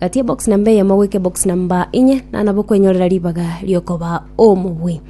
Gati ebox namba eyemo goika ebox namba inye nanabo okwenyorera ribaga riokoba omobui.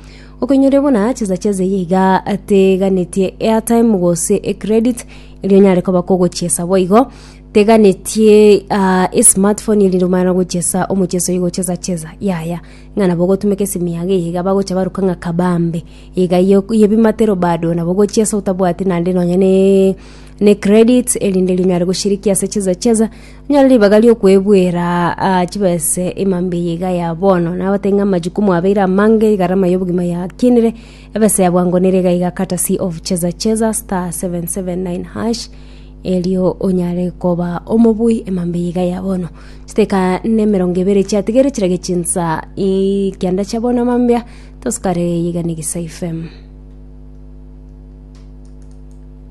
Okwenyoria buna chisacha eze iye iga teganetie airtime gose ecredit erio onyare koba kogochiesa boigo teganetie ah, esmartphone erinde omanyare gochiesa omochieso oyo gochesa chesa yaya ng'a nabo ogotumeka esimu yago eye iga bagocha baruka ng'a kabambe iga ye- yebimatero bado nabo ogochiesa otabwati naende nonye ne ne credit erinde rinyare goshirikia ase chisa chesa Nyore ribaga ri'okwebuera aa chibese ima mbiya iga ya bono, nabatebie ng'a amachuku mwabeire amange, egarama y'obogima yakinire, ebesa ya bwango nere iga iga courtesy of Cheza Cheza *779#, erio onyare koba omobui ima mbiya iga ya bono. Chideka na emerongo ebere chiatigaire chirage chinsa ii kianda chia bono mambia, tosukare eye iga na Egesaifm.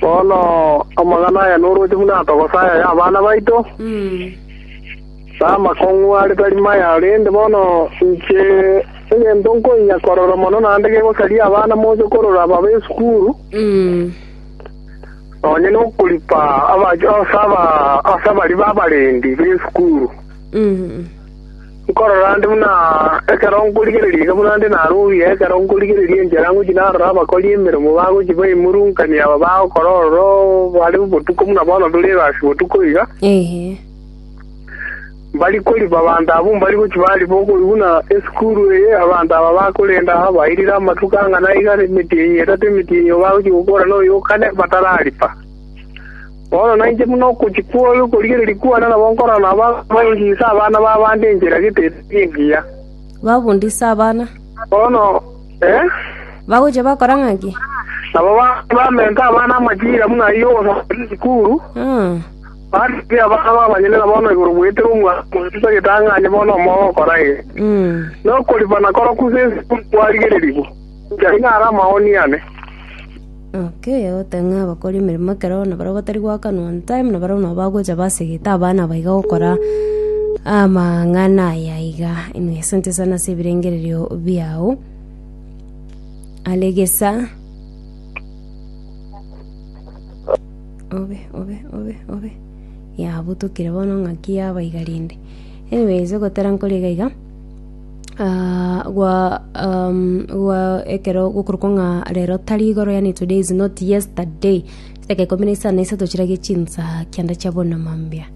Bono amang'ana aya noroche buna atogosa aya y'abana baito, na amakong'u are tari maya, korende bono inche egento nkoinyia korora mono naende gegosaria abana moche korora babe esukuru, nonye na okoripa ase abari b'abarendi b'esukuru. Nkorora 'nde buna ekero nkorigereria iga buna 'nde naroogie ekero nkorigereria enchera ngochia narora abakori emeremo bagochia baimorunkania aba bagokora ororo bare botuko buna bono tore egasi botuko iga. Mbari koriba abanto abwo mbari gochia bariba okoigwa buna esukuru eye abanto aba bakorenda bairire amatuko ang'ana iga emetienyi etato emetienyi igo bagochia gokoorana oyo okane batarariba. Bono nainche buna okochia kw'oyo okorigereria kwane nabo nkorora nabo akobaingisa abana b'abande enchera getetari engiya. Babundise abana. Bono, eh? Bagochia bakora ng'a ki? Nabo ba- bamenta abana amachira buna ayio ogosomera esukuru, Mm. barigia abana b'abanyene na bono igoro bwetera omwana omoyio ase egetang'ani bono omoyo ogokora eye. Mm. Nokoripana koroku ase esukuru kwarigererigwa, inche nigo are amaoni ane. Naki oyogote ng'a abakori emeremo ekero nabarabwo batari goakanwa on time, nabarabwo nabo bagocha basegete abana aba iga gokora amang'ana aya iga. Inwe asante sana ase ebirengererio biao. Are gesa. Obe, obe, obe, obe. Yabutukire bono ng'aki yaba iga rende. Anyways ogotera nkore iga iga. ah, gwa um, gwa ekero gokorokwa ng'a rero tari igoro yani today is not yesterday chidaka ikumi na isano na isato chirage chinsa kianda chia bonamambia